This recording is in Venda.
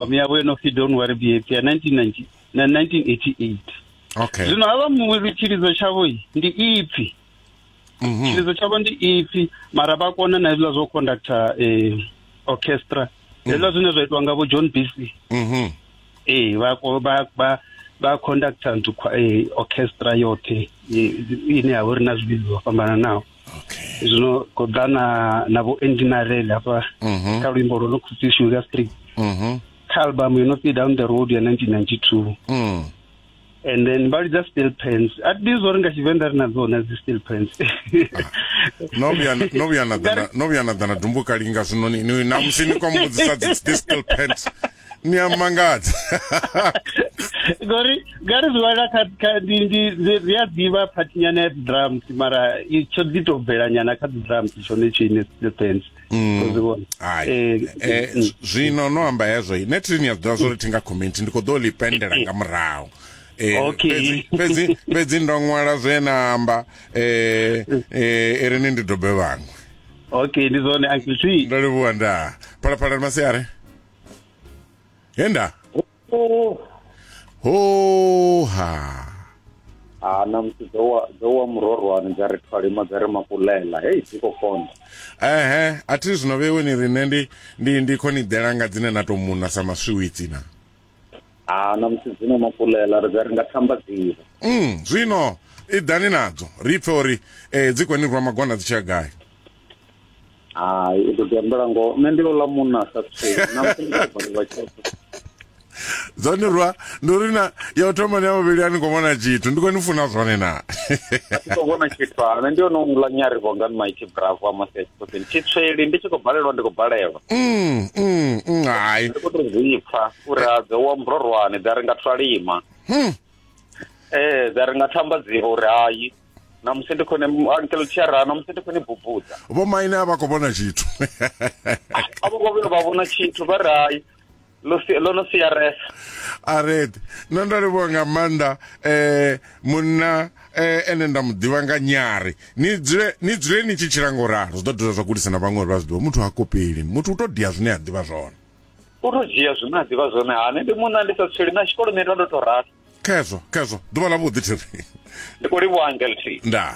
miyavo yo no pfi don't worry be happy ya 1990 na 1988 okay zwino havha muvhili tshilidzo tshavho i, ndi ipfi Mhm. tshilidzo tshavho ndi ipfi mara vha kona na hezwiḽa zwo conductor eh, orchestra hezwiḽa zwine zwa itiwa nga vho john bc Mhm. eh, vha ko- vha- vha- vha conductor nthu khwa- eh, orchestra yoṱhe eh, ine ya vha uri na zwivhidzo zwo fhambananaho zwino ko ḓa na na vho enginarel hafha mhm. kha luimbo lwo no khou pfi sugar street mhm. kha album yo no pfi down the road ya 1992 mm. and then vha lidza steel pants a ti ḓivhi zwori nga tshivenḓa ri na dzona dzi steel pants no vhuya na ḓana dumbuka linga zwino namusi ni kwa mbudzisa dzi steel pants ni a mangadza ngori ngari zwiwana ri a ḓivha phathinyana ya drums mara tsho ḓi to bvelanyana kha drums tshone tshine depends mm. eh, eh, mm. zwino no amba hezwo ne thiri ni a zwiḓivha zwori thi nga community ndi khou ḓo ḽi pendela nga murahu Eh, fhedzi fhedzi ndo ṅwala zwe na amba eh, eh, iri ni ndi dobe vhaṅwe okay ndi zwone uncle t ndo livhuwa ndaa phalaphala ndi masiari Yenda. Oh, Ho ha. ah, na musi dzo wa dzo wa murorwani dza ri thwalima dza ri makulela. Hey, dzi khou konḓa. Ehe, a thi zwino vhewe ni rine ndi ndi ndi khoni dela nga dzine na to muna sa maswiwitsi na. Ah, na musi dzino makulela ri dza ri nga thamba dzivha. Mm, zwino i dani nadzo. Ri pfe uri eh dzi koni rwa magwana dzi tsha gai. hai u ḓo tambela ngoho nṋe ndi ḽola munna a sa tsee dzone rwa ndi uri na ya u thoma ni ya vhuvhili a ni khou vhona tshithu ndi khou ni funa zwone na khou vhona tshithu ane ndi one uḽa nyari vho nga maiti bravo a masi achiposen tshitsweli ndi tshi khou balelwa ndi khou balelwa mm, mm, mm, hai ndi khou to zwipfa uri a dze wa mbrorwane dza ri nga thwalima hmm. ee eh, dza ri nga thamba dzivo uri hayi na musi ndi khone ankelo tshiara na musi ndi khone bubudza vho maine a vha khou vhona tshithu a vho vhona vha vhona tshithu vha rai lo no siaresa a red nṋe ndo livhuwa nga maanḓa um munna eh, ene nda mu ḓivha nga nyari ni dzule ni dzule ni tshi tshila nga u ralo zwi ḓo dovha zwa gudisa na vhaṅwe uri vha zwi ḓivha muthu ha kopeli muthu u to dia zwine a ḓivha zwone u to dzhia zwine a ḓivha zwone hani ndi munna ndi sa tsweli na tshikoloni ndo ndo to rasa khezwo khezwo ḓuvha ḽa vhuḓi thiri ndi khou livhuwa angelfi ndaa